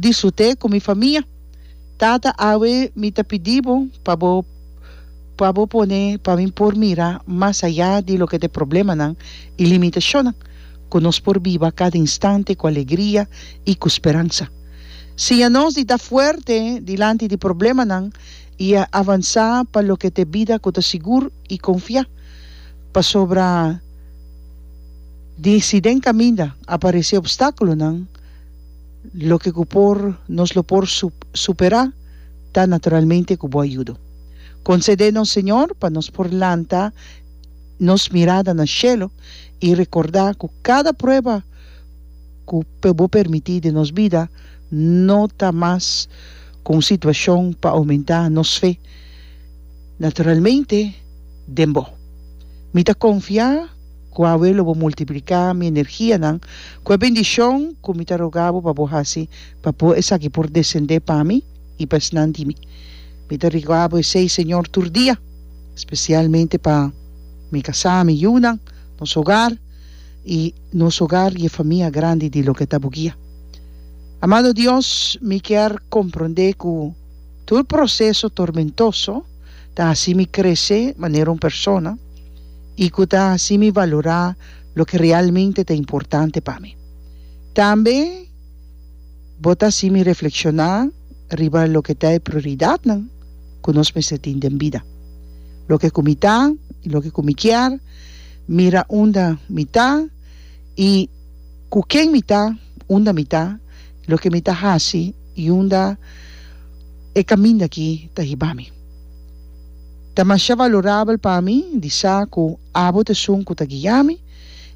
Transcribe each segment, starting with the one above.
Disfrut'é ku mi famia. Tata awe mi ta pidi bo pa bo pa bo pone pa mi por mira mas ayá di loke ta e problemanan i limitashonnan, ku nos por biba kada instante ku alegria i ku speransa. Siña nos di ta fuerte dilanti di problemanan i avansá pa loke ta e bida ku ta sigur i konfiá, pasobra di si den kaminda aparesé obstákulonan, Loke ku por nos lo por superá ta naturalmente ku bo ayudo. Konsedé nos Señor pa nos por lanta nos mirada na shelu i rekordá ku kada prueba ku bo permití den nos bida no ta mas ku un situashon pa oumentá nos fe naturalmente den bo. Mi ta konfiá. Ku awe lo bo multipliká mi energianan ku e bendishon ku mi ta rogá bo pa bo hasi pa bo esaki por desendé pa mi i pa esnan di mi. Mi ta rogá bo esei, Señor, tur dia, spesialmente pa mi kasá, mi yunan, nos hogar i nos hogar i e famia grandi di loke ta bo guia. Amado Dios, mi kier komprondé ku tur proseso tormentoso ta hasi mi krese manera un persona. i ku ta hasi mi valorá loke realmente ta importante pa mi. Tambe bo ta hasi mi reflekshoná riba loke ta e prioridatnan ku nos mester tin den bida. Loke ku mi ta i loke ku mi kier, mira unda mi ta i ku ken mi ta, unda mi ta, loke mi ta hasi i unda e kaminda akí ta hiba mi. Ta masha valorabel pa mi di sa ku abo ta esun ku ta guia mi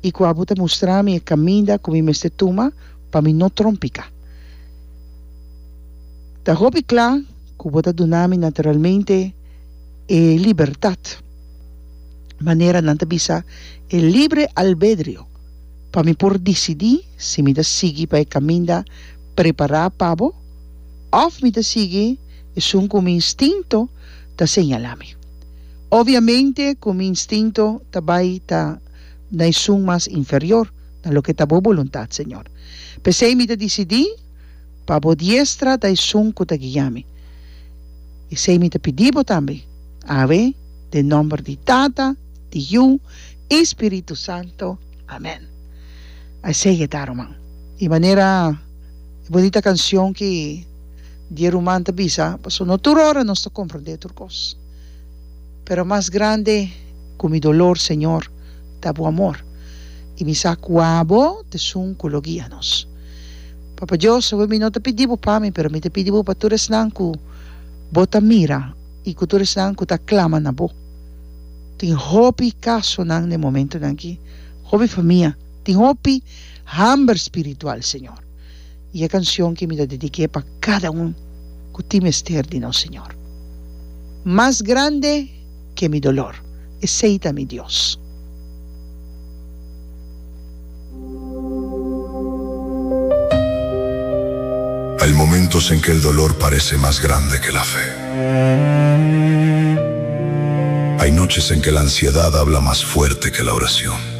i ku abo ta mustra mi e kaminda ku mi mester tuma pa mi no trompiká. Ta hopi kla ku bo ta duna mi naturalmente e libertat, manera nan ta bisa e libre albedrio, pa mi por disidí si mi ta sigui pa e kaminda prepará pa bo òf mi ta sigui esun ku mi instinto. ta señala mi. Obviamente cu mi instinto ta bay ta na e sun mas inferior, na loke ta bo boluntad, Señor. Pesey mi ta dicidi pa bo diestra ta e sun cu ta guia mi. Esey mi ta pidi bo tambe, Awe, den nomber di Tata, di Yu y Spiritu Santo. Amen. Esey e ta, ruman. E manera, e bonita cancion ki Di ruman ta bisa, Pasobra no tur ora nos ta komprendé tur kos. Pero mas grande ku mi dolor, Señor, ta Bo amor. I mi sa kua Bo ta esun ku lo guia nos. Papa Dios, awe mi no ta pidi Bo pa mi, pero mi ta pidi Bo pa tur esnan ku Bo ta mira i ku tur esnan ku ta klama na Bo. Tin hopi kasonan den e momentunan akí, hopi famia tin hopi hamber spiritual, Señor. I e canción ki mi ta dediqu'é pa cada un cu tin mester di nos Señor. Mas grande ke mi dolor, Esei ta mi Dios. Hay momentos en que el dolor parece más grande que la fe. Hay noches en que la ansiedad habla más fuerte que la oración.